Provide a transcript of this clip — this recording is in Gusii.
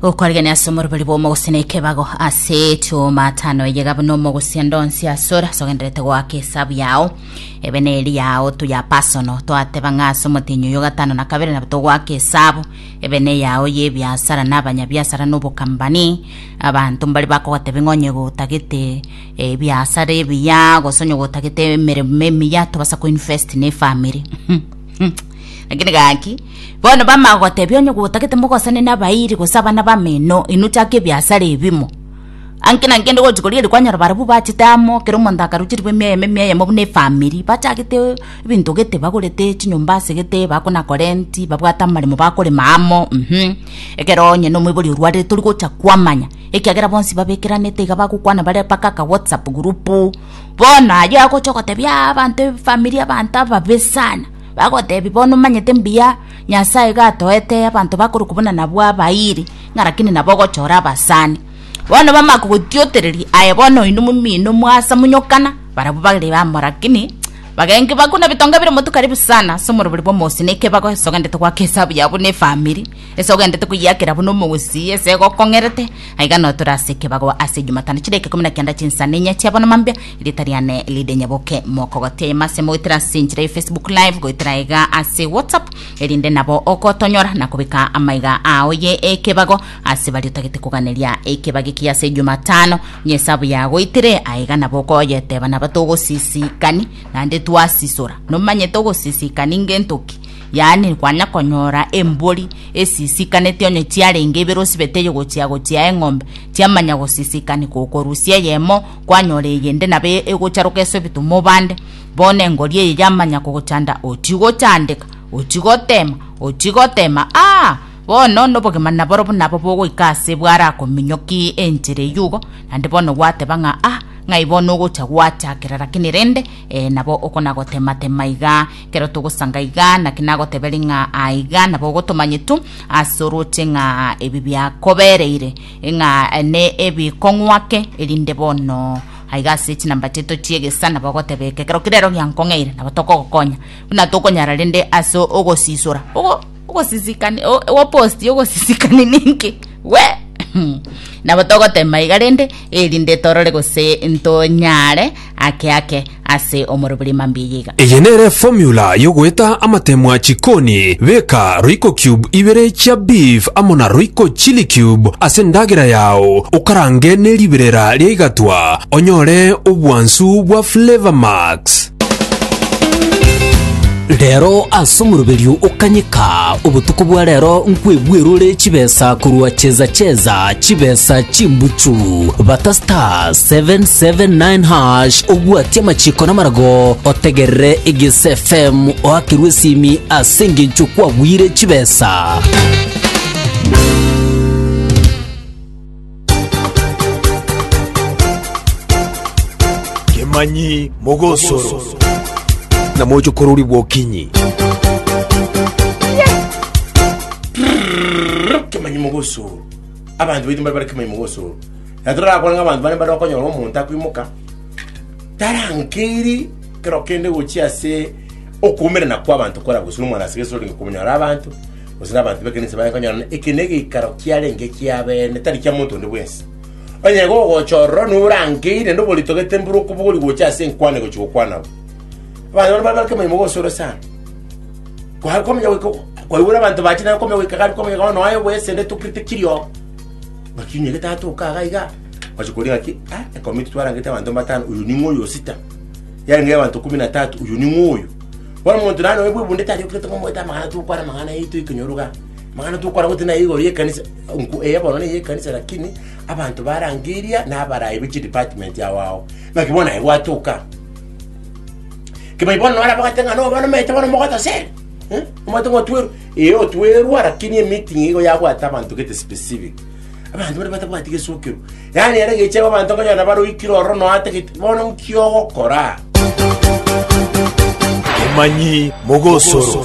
okoregania ase omorobori bw'omogosi na ekebago ase tumatano eyega buna omogosi endonsi asore sogenderete goaka esabu yao ebe neri yao tuya pasono twateba ng'a ase omotenyi oyo gatano na kabere nabo togoaka esabu ebe ne yao y'ebiasara na abanyabiasara na obokambani abanto mbari bakogoteba ng'a onye gotagete ebiasara ebiya gose onye gotagete emeremo emiya tobasa koinvest na efamiri lakini gaki Bono bamagotebia, Onye gotagete mogosane nabairi gose abana bameno, inwe chaka ebiasara ebimo. Anki na nkende gochi koria eri kwanyora barabwo bachete amo, kera omonto akaruche ribe emia eyemo emia eyemo buna efamiri, bachagete ebinto gete bagorete chinyomba ase gete bakona korenti, babwate amaremo bakorema amo mhm. Ekero onye nomoibori orwarire tori gocha kwamanya, ekiagera bonsi babekeranete iga bagokwana bare mpaka aka whatsapp group. Bono ayio agocha ogotebia abanto efamiri abanto ababe sana. Bagoteebia, Bono omanyete mbuya Nyasae iga atoete abanto bakorokwa buna nabwo abairi, ng'a rakini nabo ogochora abasani. Bono bamanye kogotiotereria, aye bono oino momino moasa monyokana, barabwo bare amo rakini bagenge bakuna bitonga bire motu karibu sana ase omorobori bw'omosio, na ekio bagosoganete goaka esabu yabo na efamiri. Ese ogenderete koyiakera buna omogusii, ese gokong'erete, aiga notore ase ekebago ase Ejumatano chidaika ikomi na kenda chinsa na inya chiabona mambia, erieta riane ride nyaboke. Mokogotia eyemo ase mogoetera ase enchera ya Facebook Live goetera aiga ase WhatsApp, erinde nabo ogotonyora na kobeka amaiga ao ye ekebago ase baria otagete koganeria. Ekebago ekiya ase Ejumatano niyo esabu yagoitire, aiga nabo okoyeteba naba togosisikani, naende twasisora. Nomanyete ogosisikani ngento ki? Yaani kwanya konyora embori esisikaneti onye chiarenge ibere osibete eye gochia gochia eng'ombe, chiamanya gosisikanika okorusia eyemo kwanyora eyende nabo e- egocharoka ase obitomwa obande. Bono engori eye yamanya kogochanda ochie gochandeka, ochie gotema, ochie gotema aa bono nobogima naborobwo nabo bogoika ase bwarakominyoki enchera eyio igo naende bono gwateba ng'a ah ng'ai bono ogocha gwachakera lakini rende eh nabo okona gotema tema igaa. Ekero togosanga iga, naki nagoteberia ng'a aa iga nabo ogotomanyetu ase orooche ng'a ebi biakobereire ng'a ne ebikong'wake, erinde bono aiga ase chinamba chiaito chi'egesa nabo ogoteba eke, ekero keria rero giankong'eire, nabo tokogokonya buna tokonyara rende ase ogosisora ogo. Ogosisikani o- oboposti y'ogosisikani ninki? We! Nabo togotema iga rende, erinde torore gose ntonyare ake ake ase omorobori mambia iga. Eye nere formula yogoeta amatemwa chikoni, beka royco cube ibere chia beef amo na royco chili cube ase endagera yao okarange neriberera riaigatwa onyore obwansu bwa flavor max. Rero ase omoroberio o kanyeka, obotuko bwa rero nkwebwerure chibesa korwa cheza cheza chibesa chimbuchu. Bata star 779 hash obwati amachiko namarago otegerere Eges FM oakerwe esimi ase engencho kwagwire chibesa. Kemanyi mogosoro. Na moche korori bwokinyi. kemanyi mogosoro abanto baito mbare bare kemanyi mogosoro na torakora ng'a abanto bare mbare bakonyora omonto akoimoka tarankeiri kero kende gochia ase okuumerana kwa abanto kore agosura omwana ase geso orenge komonyora abanto gose nabanto b'ekanisa baye konyorana, eke negeikaro kiarenge ekiabeene, tari kia monto onde bwensi. Onye igo ogochorora nigo orangeire, naende oboritogete mbura okobogori gocha ase enkwana egochia gokwana abwo. Abanto barabwo bake omonyene mogosa ore sana. Kwa- kwamenya goika kwaigure abanto bache naye kwamenya goika gari kwamenya bono aye bwesende tokirete kirio ngaki onye getato okaga iga gwacha koria ngaki ah ekomiti twarangete abanto mbatano oyo ning'o oyo osita yarenge abanto kumi na tatu oyo ning'o oyo Bono omonto naende oyo bwebunde tari okirete ngomoete amang'ana tokwana amang'ana yaito ekonyoro igaa. Amang'ana tokwana gotee naye igoro y'ekanisa, nko eye bono neye ekanisa lakini abanto ba rangi eria nabarayi be chidepartment ao ao. Naki bono naye gwatoka. Kibayi bono nore abagate ng'a no bono omanyete bono omogote ase ere, eh, omanyete ng'a otwerwe. Ee otwerwa lakini emeeting igo yabwate abanto gete specific. Abanto baria batabwati gesookero. Yaani ere geche abanto nkonyora nabaroikire ororo nonya atagete, bono nki ogokora? Emanyi mogosoro.